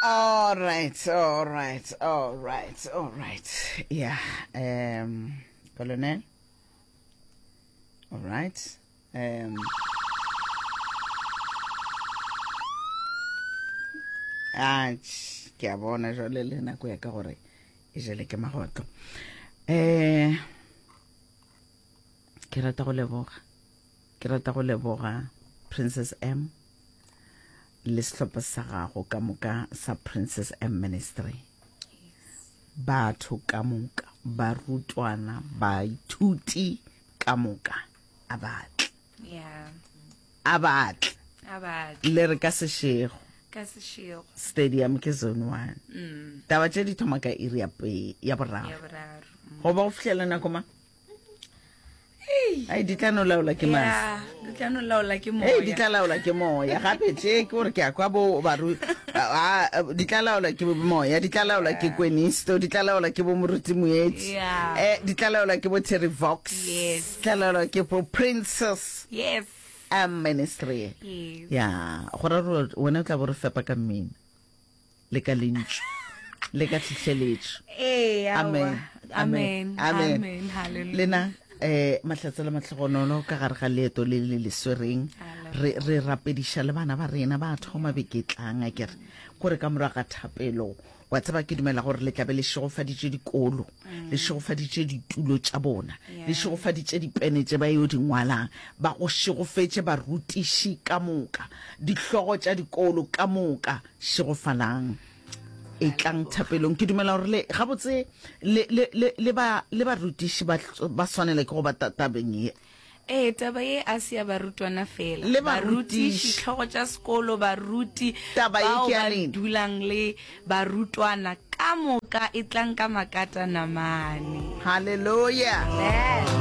All right, all right, all right, all right. Yeah, um, Colonel. All right. Um, a ke a bona jale le nako ya ka gore e jele ke magotlo um ke rata go leboga Ke rata go leboga Princess M le sehlopha sa gago ka moka sa Princess M Ministry. Batho ka moka, barutwana, baithuti ka moka a batle. Yeah. A batle. A batle. Le re ka sešego. Ka sešego. Stadium ke zone 1. Mm. Taba tše di thoma ka iri ya boraro. Ya boraro. Mm. Go ba go fihlela nako mang? ai di tla no laola ke mas Yeah, di tla no laola ke moya ee di tla laola ke moya gape tše ke gore ke ya kwa bo baru a- a- di tla laola ke moya di tla laola ke kwenisto di tla laola ke bo moruti moetsi Yeah. Eh, di tla laola ke bo terry vox Yes. di tla laola ke bo princess yes a ministry yes ya go ra wena o tla bo re fepa ka mmino le ka lentšu le ka tlhitlheletšo ee amen amen amen lena eh mahlatse le matlhogonolo ka gare ga leeto le le leswereng re re rapediša le bana ba rena ba thoma beketlang a kere kore ka morago ga thapelo wa tseba ke dumela gore le tlabe le šegofaditše dikolo mm. le šegofaditše ditulo tša bona le šegofaditše dipene tše ba yo di ngwalang ba go šegofetše barutiši ka moka dihlogo tša dikolo ka moka šegofalang etlang thapelong ke dumela gore le gabotse le, le, le, le, ba, le barutiši ba, ba swanele ke go ba tabeng ye ee taba ye a se ya barutwana fela le barutiši tlhogo tša sekolo baruti bao ba dulang le barutwana ka moka e tlang ka makata namane halleluya